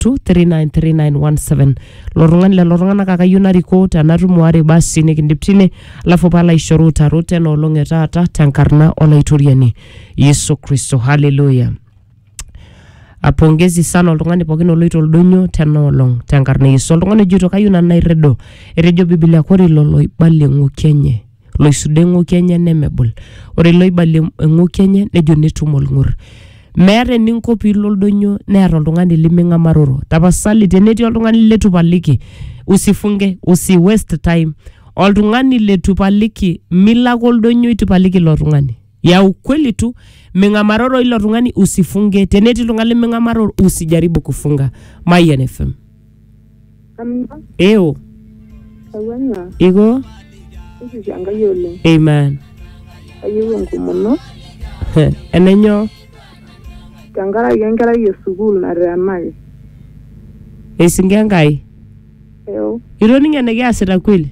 0722393917 lo tung'ani lelo tung'anak ake ayieu narikoo tenatumo are basi nikindip tine alafu palo aishoru utarot ena olong e taata tenkarna olaitoriani yesu kristo haleluya apongezi sana oltung'ani pookin oloito oldonyo tena olong tenkarna yesu oltung'ani ojoito kayieu nanu nairrido etejo bibilia kore ilo loibalie ng'oki enye loisudo eng'oki enye nemebul ore loibalie eng'oki enye nejo netum olng'ur meeta eninko piilo oldonyo neeta oltung'ani liming'amaroro tapasali tenetii oltung'ani letu paliki usifunge usi waste time oltung'ani letu paliki milo ake oldonyo itu ipaliki ilo tung'ani ya ukweli tu ming'amaroro ilo tung'ani usifunge tenetii iltung'ani liming'amaroro usijaribu kufunga mayian fm Amina, eo Tawanya, iko Yesus Enkai oleng. amen Kayieu enkomono Heh, enenyo tenkaraki enkerai e sukuul nateenaki. eisinga enkai Eo, itoning enekiasita kweli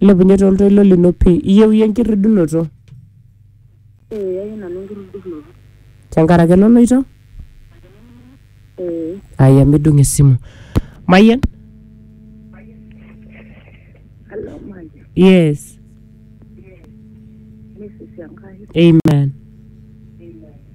Ilepunye toltoilo lino pii. Iyieu iyie enkirridunoto. Ee, ayieu nanu enkirridunoto. Tenkaraki eloloito? Ee. Aya midung esimu. Mayian? Hello, Mayian. Yes. Yes. Yesus Enkai. Amen.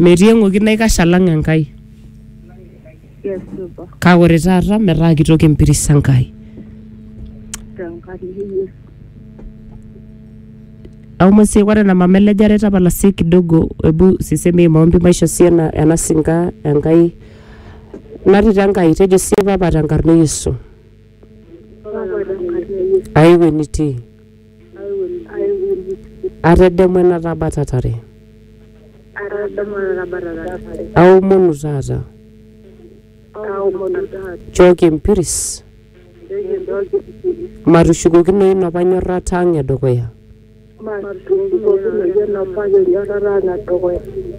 Metii eng'oki naikash alang Enkai. Kake ore taata metaa kitok empiris Enkai. Aomon sii ore ena mama elejare tapala sii kidogo ebu sisemi hii maombi maisho sii ena, ena sinka Enkai natii te Enkai tejo sii papa tenkarna e Yesu. Aewuo enitii. Atedemu ena tabatatare. Aomonu taata. Nchooki empiris. Matushukokinoyu inopa nyorrata ang e dukuya.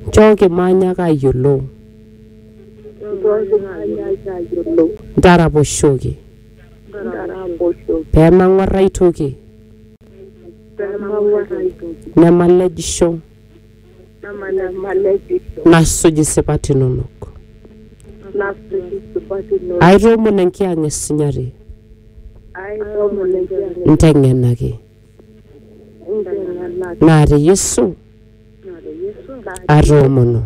Nchooki maanyaaka ayiolou. Ntaraposhoki. pee mang'uar ai toki nemalejisho nasuj isipat inonok. Aitoomon enkiyang'a e sinyati inteng'enaki naa te Yesu atoomono.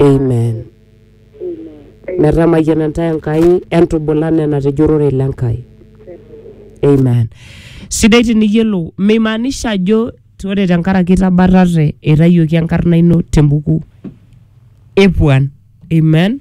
Amen. Metamayiana intae Enkai entubula nena te jurore le Nkai. Amen. Sidai tiniyiolou, meimaanisha ajo ore tenkaraki itabatate eitayioki enkarna ino tembuku epuan. Amen.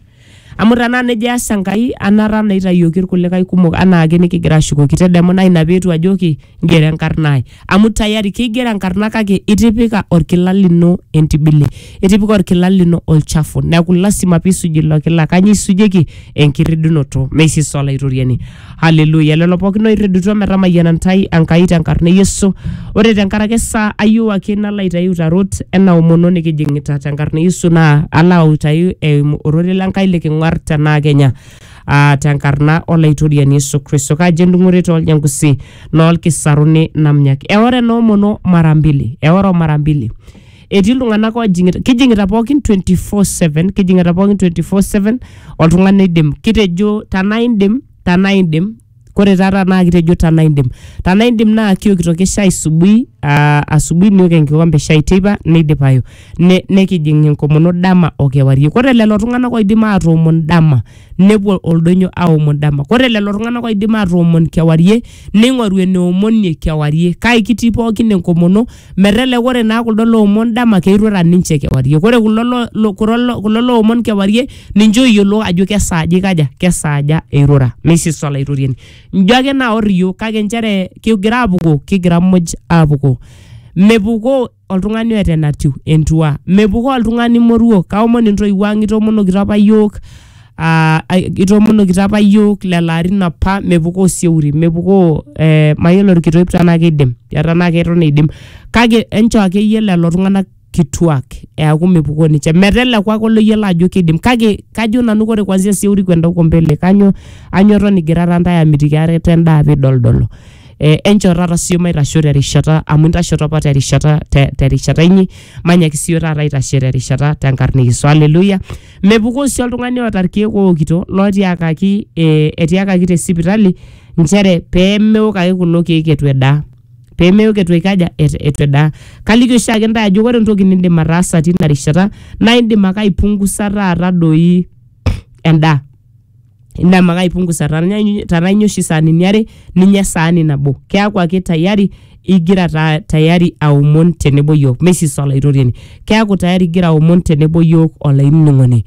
Amu tenaa nejo eas Enkai anata naa eitayioki irkulikae kumok anaa ake nikigira ashukoki tedemuna ina peetu ajoki ngero enkarna ai. amu tayari keigero enkarna kake itipika orkila lino entibili itipika orkila lino olchafu neeku lasima piisuj ilo kila kanyio isujieki enkirridunoto meisisa olaitoriani haleluya lelo pookin oirridutua metamayiana ntai Enkai tenkarna e Yesu ore tenkaraki esaa ayieu ake nalo aitayu utarot ena omono nikijing'ita tenkarna e Yesu naa alo autayu eimu ororei le Nkai liking'uar tenaa kenya aa tenkarna olaitoriani Yesu Kristo. Kaji endung'ore tooljankusi noolkisaruni namnyak. Eoro enoomono mara mbili, eoro mara mbili. Etii iltung'anak oojing'ita, kijing'ita pookin 24/7, kijing'ita pookin 24/7 oltung'ani oidim. Kitejo tanaa indim, tanaa indim Kore taata naa kitejo tana indim. Tana indim naa kiokitoki shai subui, aa asubui niok enkikombe shai teipa neidipayu. Ne nekijing' enkomono dama o kewarie. Kore lelo tung'anak oidim atoomon dama nepuo oldonyo aomon dama. Kore lelo tung'anak oidim atoomon kewarie neing'oru enoomonie kewarie kake kitii pookin enkomono. Meteleku ore naa kuldo loomon dama keirura ninche kewarie. Ore kulo lo, lo, kulo lo, kulo loomon kewarie ninche ooyiolo ajo kesaaja eikaja, kesaaja eirura. Meisis Olaitoriani. Njo ake naor iyiook kake nchere kigira aapukoo, kigira muj aapukoo. Mepukoo oltung'ani oata enatiu entua. Mepukoo oltung'ani moruo. Kaomon intoiwuo ang' itomonokito apa iyiook. ah, ai- itoomonokito apa yiok lelo arin apa mepukoo sieuri mepukoo eh, mayiolo irkitoip tenaa kidim ya tenaa keton eidim kake enchoo akeyie lelo tung'anak kituak eaku mepukoo ninche meteleku ake oloyiolo ajo kidim kake kajo nanu kore kwanzia sieuri kwenda huko mbele kanyo anyo ton igirara ntae amitiki are tendaa pidoldolo eh, enchoo taata sio maitasho terishata amu intashoto apa terishata te- terishata inyi manyaki sio taata aitashe terishata tenkarna e Yesu haleluya Mepukoo sii oltung'ani oota irkeek ookito lootiakaki eh, etiakaki te sipitali nchere pee meok ake kulo keek eitu edaa pee meok eitu eikaja et- eitu edaa kaliki oshiake intae ajo ore entoki nindim ataasa tina rishata naa indim ake aipungusa taata doi endaa indim ake aipungusa tanai tanai inya oshi saanini are ninya esaani nabo keaku ake tayari igira ta, tayari aomon tenebo yiok meisisa olaitoriani keaku tayari igira aomon tenebo yiok olainining'oni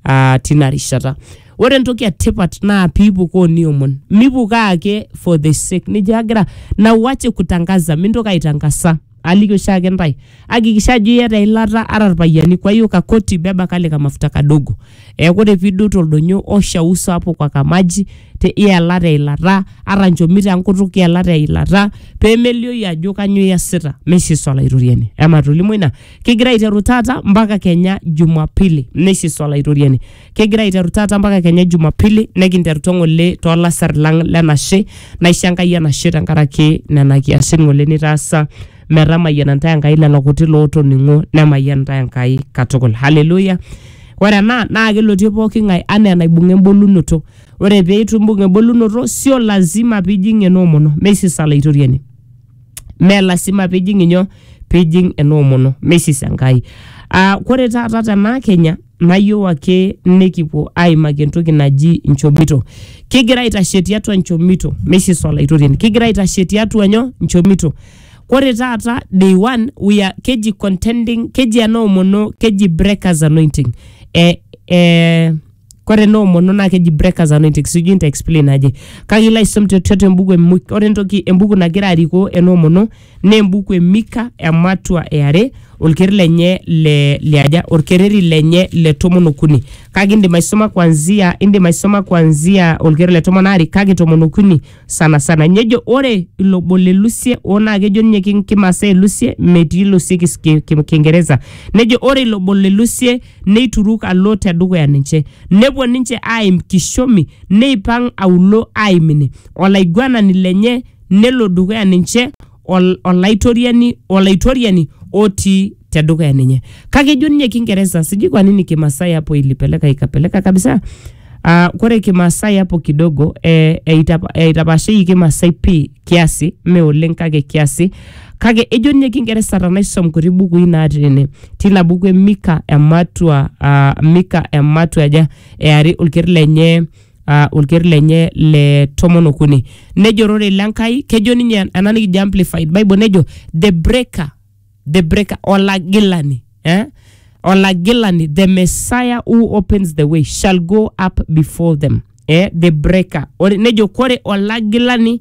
uh, tina rishata ore entoki etipat naa piipukoo niomon mipukoo ake for the sake nijo agira na uache kutangaza mintoki aitangasa aliki oshiake ntae akikisha ajo iyata eilata ara irpayiani kwa hiyo kakoti beba kale kamafuta kadogo eeku ore piidou toldonyo osha uso hapo kwa kamaji te ielata eilata ara nchomito enkutuk ielata eilata pemelioyu ajo kanyoo iyasita mesho Yesu olaitoriani amaa tolimu ina kigira aiteru taata mpaka kenya jumapili nesha Yesu olaitoriani. kegira aiteru taata mpaka kenya jumapili nekinterutua ng'ole toolasar lang lenashe naisho enkai enashe tenkaraki nena kiasin ng'ole nitaasa metamayiana ntae enkai lelo kuti lootoning'o nemayian ntae enkai katukul haleluya ore ena naa kelotie pooki ng'ae anaa enaibung'a embolunoto ore pee itu imbung embolunoto sio lazima piijing enoomono meisisa laitoriani mee lasima pijing inyo pijing enoomono meisis enkai uh, kore taata tenaa kenya nayieu ake nikipuo aimaki entoki naji inchomito kigira aitashe tiatua inchomito meisis olaitoriani kigira aitashe tiatua nyo inchomito kore taata day one we are keji contending keji enoomono keji breakers anointing eh, eh, Kore ena omono naa keji breakers anointing sijui nta explain aje kake ilo aisom te- tiatua embuku e Mik- ore entoki embuku nagira arikoo ena omono naa embuku e Mika ematua e are olkereri lenye le liaja olkereri lenye le tomon okuni kake indim aisoma kwanzia indim aisoma kwanzia olkereri le tomon aare kake tomon okuni sana sana nejo ore ilo bo le lusie oo naa kejo ninye ki- kimasaa e lusie metii lusie kis- ki- ki- kingereza nejo ore ilo bo le lusie neituruk alo tedukuya ninche nepuo ninche aaim kishomi neipang aulo aimini olaiguanani lenye nelo dukuya ninche ol- olaitoriani olaitoriani otii tedukuya ninye kake ejo ninye kingereza sijui kwa nini kimasai hapo ilipeleka ikapeleka kabisa Uh, kore kimasai hapo kidogo eh, eitapa- eitapashei kimasai pii kiasi me oleng kake kiasi kake ejo ninye kingereza tanaisom kuti bukui natii ene tina buku e mika ematua uh, mika ematua aja eari olkeri lenye uh, olker lenye le tomon okuni nejo ororei le Nkai kejo ninye ena nikijo amplified bible nejo the breaker the breaker olagilani eh? olagilani the messiah who opens the way shall go up before them eh? the breaker Ore, nejo kore olagilani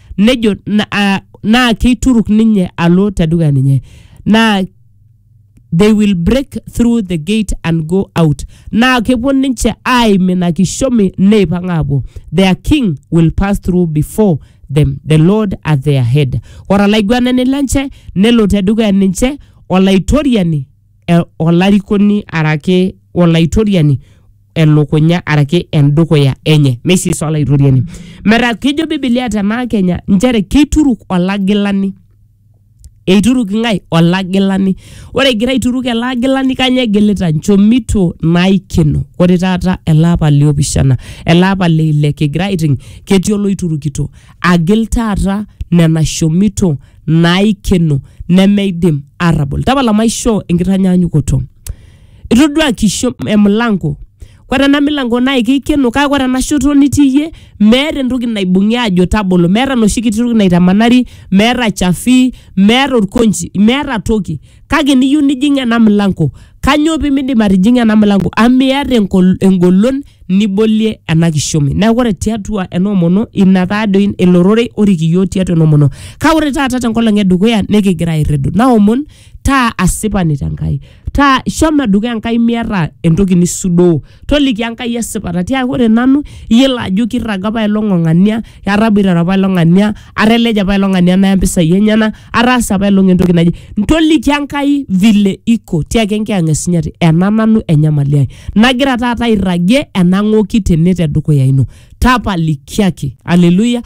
nejo na- ah, naa keituruk ninye alo te dukuya ninye naa they will break through the gate and go out naa kepuo ninche aaim ina kishomi neipang aapuo their king will pass through before them the lord at their head ore olaiguanani lenche nelo te dukuya ninche olaitoriani eh, olarikoni araki olaitoriani elukunya araki endukuya enye meisisa olaitoriani metaa kejo bibilia tenaa kenya nchere keituruk olagilani eituruk ng'ae olagilani ore egira aituruk ele agilani kanya egilita nchomito naikeno ore taata ele apa liopishana ele apa leile kigira aiting ketii oloiturukito agil taata nena shomito naikeno nemeidim arrabol tapala maishoo enkitanyaanyukoto itodua kisho emilango kore ena milango naa keikeno kake kore ena shoto nitii iyie meeta entoki naibung'i aajo tabolo meeta enoshi kiti toki naitamanari meeta chafi meeta orkonchi meeta toki kake niyieu nijing ena milango kanyoo pimindim atijing'a ena milango amu miata engol- engolon nibolie ena kishomi neeku ore tiatua ena omono ina taadoi ilo rorei orik iyiok tiatua ena omono kake ore taata tenkolong edukuya nikigira airridu naomon taa asipani te Nkai. taa shomo dukuya Enkai miata entoki nisudoo. Toliki Enkai esipata tiaki ore nanu iyiolo ajo kirraga apa ilo ng'ang'ania, ataboitare apa ilo ng'ania, ateleja apa ilo ng'ania naya mpisai enyenak, ataasa apa ilo ng'ania entoki naje. Toliki Enkai vile iko tiaki Enkiyang'et Sinyati ena nanu enyamali ai nagira taata airragie enang'oki tene te dukuya ino. tapalikiaki aleluya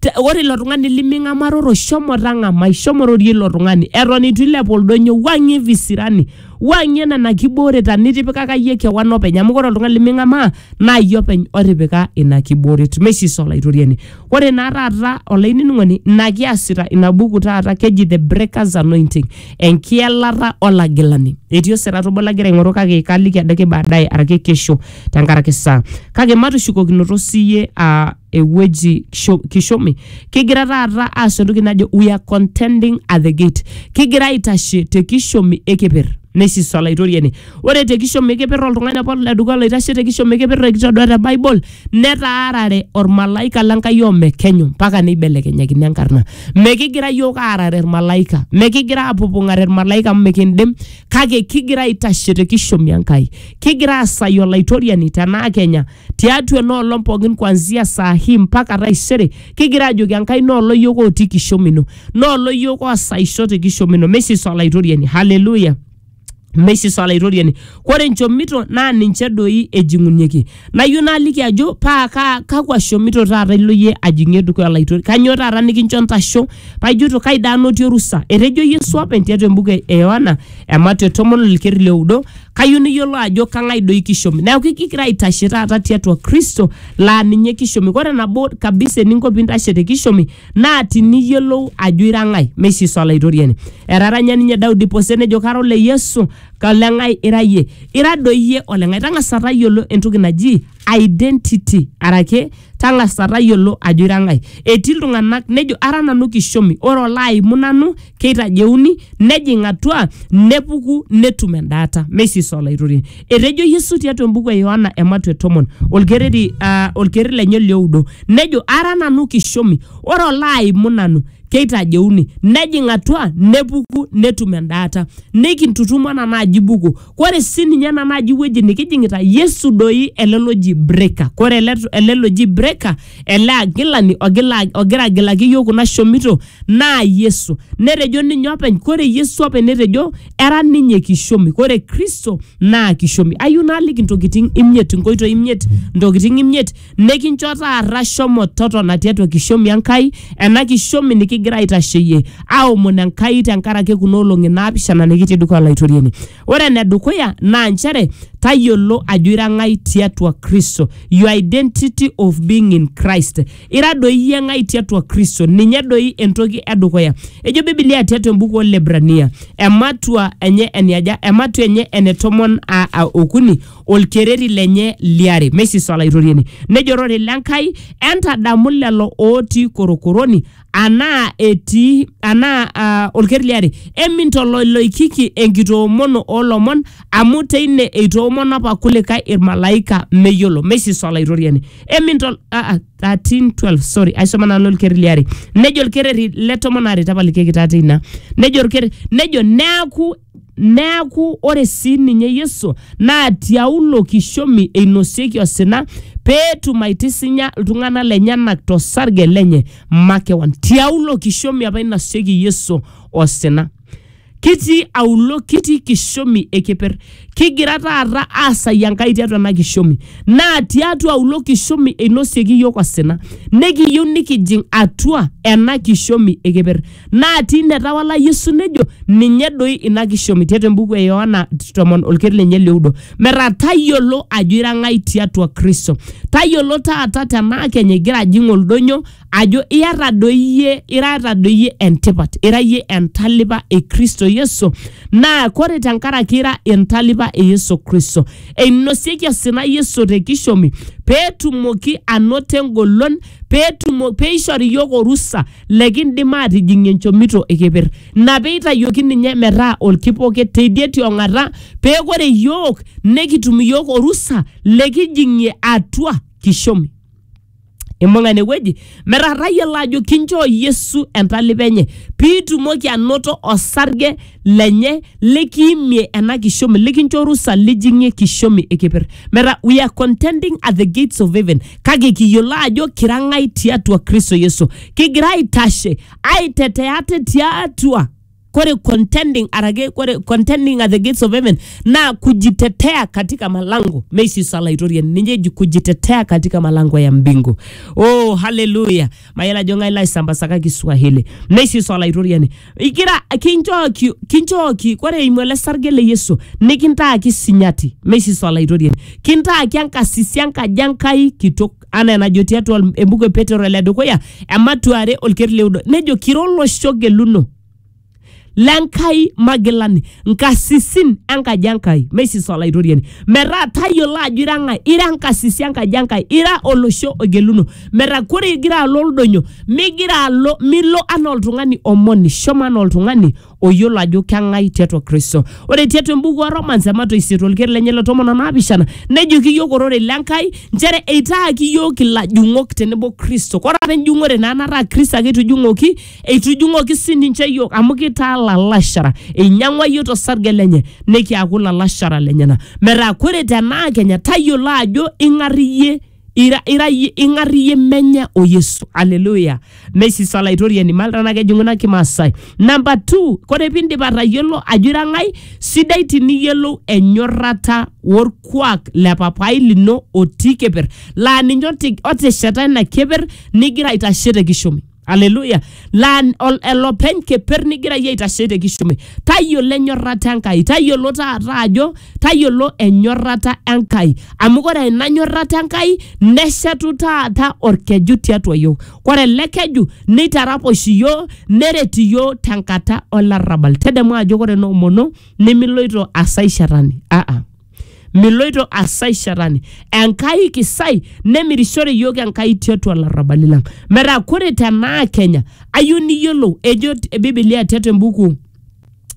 Te- ore ilo tung'ani liming'amaroro shomo tang'amai shomo rorie ilo tung'ani eton itu ilepu oldonyo wang'ie visirani wang'ie nena kibooreta nitipikaka yie kewan openy amu ore oltung'ani liming'amaa naa yie openy otipika ina kibooret mesis olaitoriani ore naa taata olainining'oni ina kiasita ina buku taata keji the breakers anointing enkielata olagilani etii osirata obo lagira aing'oru kake kaliki adake baadaye arake kesho tenkaraki saa kake matushukokinoto siyie aa ewueji kisho- kishomi kigira taata aas entoki najo we are contending at the gate kigira aitashe te kishomi ekeper nesis olaitoriani ore te kishomi ekeper oltung'ani apa ledukuya loitashe te kishomi ekeper ekitodua te bible netaarare ormalaika lenkai omekenyu mpaka neibelekenyakini enkarna mekigira yiok aarare irmalaika mekigira apupung'are irmalaika amu mikindim kake kigira aitashe te kishomi Enkai, kigira aasai Olaitoriani tenaa Kenya tiatua ena olong pookin kuanzia saa hii mpaka taisere, kigira ajoki Enkai noolo iyiook otii kishomi ino, noolo iyiook oosaisho te kishomi ino, meisisa Olaitoriani. Haleluya! meisisa olaitoriani kore nchomito naa ninche doi ejing'unyeki nayieu naaliki ajo paa kaa kakwa shomito taata ilo yie ajing'ie dukuya olaitoriani kanyoo taata nikincho ntasho Paijuto kai daa anotie orusa? Etejo Yesu openy tiatua embuku e Yohana ematua e tomon olkeri le oudo, kayieu niyiolou ajo kang'ai doi kishomi. Neaku kigira aitashe taata tiatua Kristo laa ninye kishomi. Ore nabo kabisa eninko piintashe te kishomi naa tiniyiolou ajo ira ng'ai. Mee oshi Yesu Olaitoriani. Etaranya ninye Daudi pose nejo kara ole Yesu, ole ng'ai ira iyie? Ira doi iyie ole ng'ai? Tang'asa tayiolo entoki naji identity arake tang'asa tayiolo ajo ira ng'ae etii iltung'anak nejo ara nanu kishomi ore olo aimu nanu keitajeuni nejing atua nepuku netum endaata mesis olaitoriani etejo yesu tiatua embuku e yohana ematue tomon olkereri uh, olkereri lenye lioudo nejo ara nanu kishomi ore olo aimu nanu keitajeuni nejing atua nepuku netum endaata nikintutumo ena naaji buku kore sii ninye ena naaji wueji nikijing'ita yesu doi ele loji breaker kore ele, ele loji breaker ele agilani ogila, ogira agilaki iyiok kuna shomito naa yesu netejo ninye openy kore yesu openy netejo era ninye kishomi kore kristo naa kishomi ayieu naaliki intokitin imiet inkoitoi imiet intokitin imiet Nikincho taata shomo totona tiatua kishomi Enkai, ena kishomi nikigira aitasheyie aomon Enkai tenkaraki kuna olong'i naapishana nikitii dukuya Olaitoriani. Ore enedukuya naa nchere tayiolo ajo ira ng'ai tiatua Kristo, your identity of being in Christ. Ira doi iyie ng'ai tiatua Kristo, ninye doi entoki edukuya. Ejo Biblia tiatua embuku Olebrania, ematua enye eniaja, ematua enye ene tomon a- a- okuni olkereri lenye liare. Meisisa Olaitoriani. Nejo ororei le Nkai, entadamu lelo ootii korokoroni anaa etii anaa ah, olkereri liare, emintoloiloikiki enkitoomono oo lomon amu teine eitoomono apa kulikae ilmalaika meyiolo. Meisisa Olaitoriani. Emintol ah, ah, 13:12 sorry aisoma nanu olkereri liare. Nejo olkereri le tomon aare tapalikieki taa teina. Nejo olkereri nejo neaku Neaku ore sii ninye Yesu naa tiaulo kishomi einosieki osina pee etum aitisinya iltung'ana lenyenak to sarge lenye makewan. Tiaulo kishomi apa einosieki Yesu osina. Kitii aulo, kitii kishomi e keper. Kigira taata aasai Enkai tiatua ena kishomi. Naa tiatua aulo kishomi einosieki iyiook osina. Nikiyieu nikijing atua ena kishomi e keper. naatii netawala Yesu nejo ninye doi ina kishomi tiatua embuku e Yohana tomon olkeri lenye lioudo metaa tayiolo ajo ira ng'ai tiatua Kristo tayiolo taata tenaa kenya igira ajing oldonyo ajo iyata doi iyie irata doi iyie entipat ira iyie entalipa e Kristo Yesu naa kore tenkaraki ira entalipa e Yesu Kristo einosieki osina Yesu te kishomi peetumoki anoto engolon peetumo peishori iyiok orusa lekindim aatijing'ie nchomito e keper. Ina pee eitayioki ninye metaa olkipoket teidie ti ong'ata, pee kore iyiook nekitum iyiook orusa lekijing'ie atua kishomi. Imbung'a ine wueji metaa tayiolo ajo kinchoo Yesu entalipa enye pee itumoki anoto osarge lenye likiimie ena kishomi likincho orusa lijing'ie kishomi e keper. Metaa we are contending at the gates of heaven kake kiyiolo ajo kira ng'ai tiatua kristo yesu kigira aitashe aitetea ate tiatua kore contending arake kore contending at the gates of heaven naa kujitetea katika malango meisisa laitoriani ninye eji kujitetea katika malango ya mbingu oh haleluya mayiolo ajo ng'ae laisambasakaki swahili neisis olaitoriani igira kinchooki kinchooki kore eimu ele sarge le yesu nikintaaki sinyati meisis olaitoriani kintaaki enkasisi enkaji enkai kitok anaa enajo tiatua embuku e petero ele dukuya ematuare olker leudo nejo kira olosho geluno lenkai magilani nkasisin enkaji enkai meisis olaitoriani metaa tayiolo ajo ira ng'ae ira nkasisi enkaji enkai ira olosho ogeluno metaa kore igira alo oldonyo migira alo milo anaa oltung'ani omoni shomo anaa oltung'ani oyiolo ajo keng'ae tiatua kristo ore tiatua embuku o romans emato isiet olker lenye le tomon o naapishana nejoki iyiok ororei lenkai nchere eitaaki iyiok ilajung'ok tenebo kristo kore apa enjung'ore naa nataa kristo ake etujung'oki Eitujung'oki sii ninche iyiook amu kitaa lalashara. Einyang'ua iyiook tosarge lenye nikiaku lalashara lenyena. Metaa kore tenaa kenya tayiolo ajo ing'ar iyie ira, ira iyie ing'ar iyie menye o Yesu. Haleluya. Meisisa Olaitoriani mal tenaa kejing'u ina Kimaasai. Namba two, kore piindip atayiolo ajo ira ng'ai, sidai tiniyiolou enyorrata orkuak le papai lino otii keper laa ninye oti- otesheta ina keper nigira aitashe te kishomi. aleluya laa ol- elopeny keper nigira iyie aitashe te kishume tayiolo enyorrata enkai tayiolo taata ajo tayiolo enyorrata enkai amu kore ina nyorrata enkai neshetu taata orkeju tiatua yiok kore ele keju neitaraposh iyiok neret iyiok tenkata olarrabal tedemu ajo kore noomono nimiloito asae shetani aa Miloito asai shetani. Enkai kisai nemirishore iyiook Enkai tiatua larrabali lang. Metaa kore tenaa Kenya ayieu niyiolou ejo Biblia tiatua embuku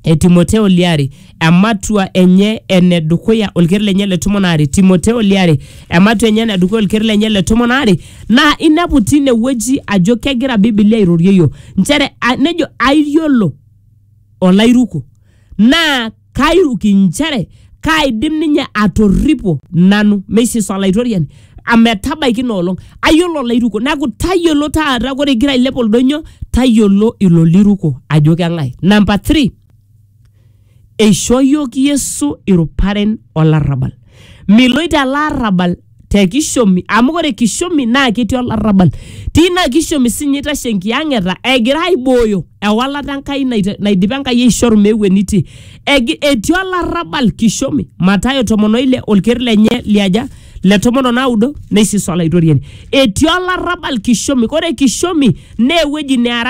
e Timoteo liare ematua enye ene dukuya olker lenye le tomon aare Timoteo liare ematua enye ene dukuya olker lenye le tomon aare naa inepu tine wueji ajo kegira Biblia airorie iyiook nchere a- nejo aiyiolo olairuko naa kairuki inchere kaidim ninye atorripo nanu meisis olaitoriani ametabaiki ina olong ayiolo olairuko neaku tayiolo taata ore igira ailep oldonyo tayiolo ilo liruko ajo keng'ae namba three eishoo yiok yesu iruparen olarrabal miloito ele arrabal te kishomi amu ore kishomi naa ketii olarrabal tina kishomi sinye itashe enkiyang'eta egira aibooyo ewalata Enkai naita- naidipa Enkai aishoru meeu enitii Egi- etii olarrabal kishomi Matayo tomon oile olker lenye liaja le tomon onaudo neisisa olaitoriani etii olarrabal kishomi ore kishomi naa ewueji nearare